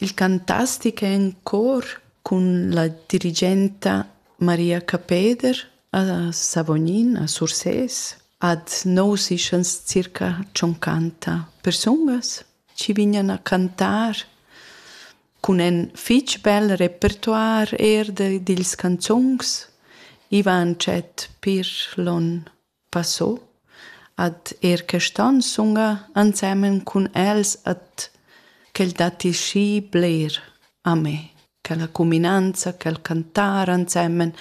Il cantastic è en cor cun la dirigenta Maria Capeder a Savognin a Sursés. Ad nous ischans circa tschoncanta persungas chi vignan a cantar cun ün fich bel repertuar eir dils canzungs. I va tschet pir lon Passo ad er quest'on sunga ensemen cun els et quel datti schi bler a me, quella cuminanza, quel cantar ensemen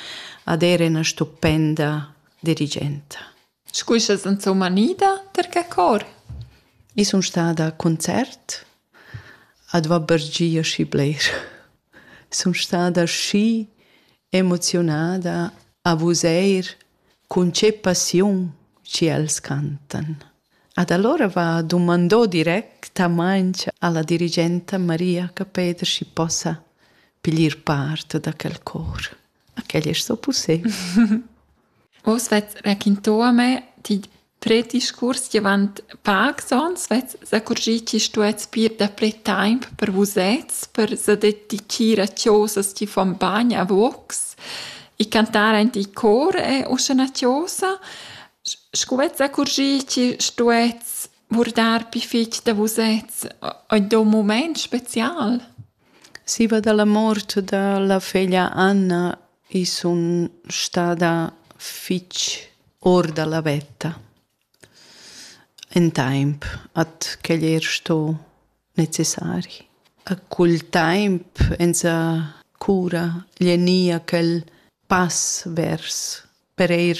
ad er ena stupenda dirigenta. Scu sast insomma nida ter che cor? I sun stada a concert ad va per gia schi bler. Sun stada schi emoziunada a vus eir Cun che passiun ch'els cantan. Ad allora va dumandò directamaing alla dirigenta Maria Capeder schi possa piglier part da quel cor. A quel es so pussebel. Oz vets raquinto a me, ti Tret discurs davant pacs ons vess s'accurgì chi stuets pir daprè taimp per vusets per sededichir a chosas chi fon bagn a vocs e cantar aint il cor è uschè üna chosa. Scu vess s'accurgì chi stuets vurdar pi fich da vusets aint ün mumaint special? Siva da la mort da la feglia Anna i sun stada fich our da la vetta ün taimp at quel eir sto necessari. A cul taimp esa cura gnü quel pass vers per eir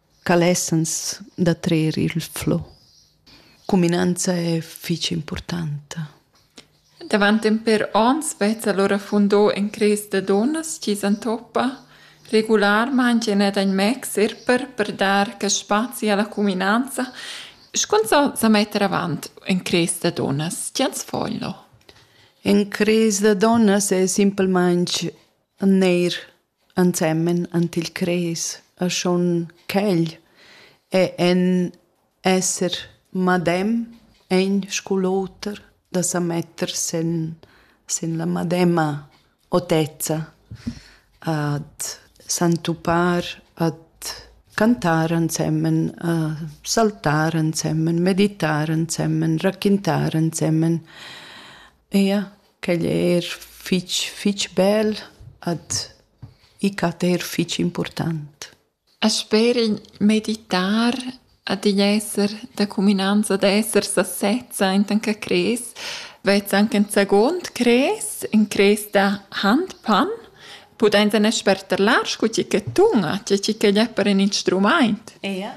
ca lessans da trer il flow. Cuminanza è fich importanta. Davant en per ons vezza l'ora fundò en cres da donnas chi s'antoppa regularmaing in ed in mexer per per dar che spazi alla cuminanza Scun so sa metter avant en cres da donnas, tiens foglio. En cres da donnas è simpelmente neir ensemen ant il cres e schon quegl è en esser madem egn scu l'oter da sa metter sen sen la madema otezza ad s'entupar ad cantar ensemen a saltar ensemen meditar ensemen raquintar ensemen Ia, quegl è eir fich, fich bel ad i cat eir fich important. E sper il meditar ad igl esser da cuminanza d'esser sa sezza enten ch'a crês, vezza anche ün second crês, ün crês da handpan, pudainsa ne sperterlar scu tgi che tun, tge tgi ch'el è per ün instrumaint. Ia.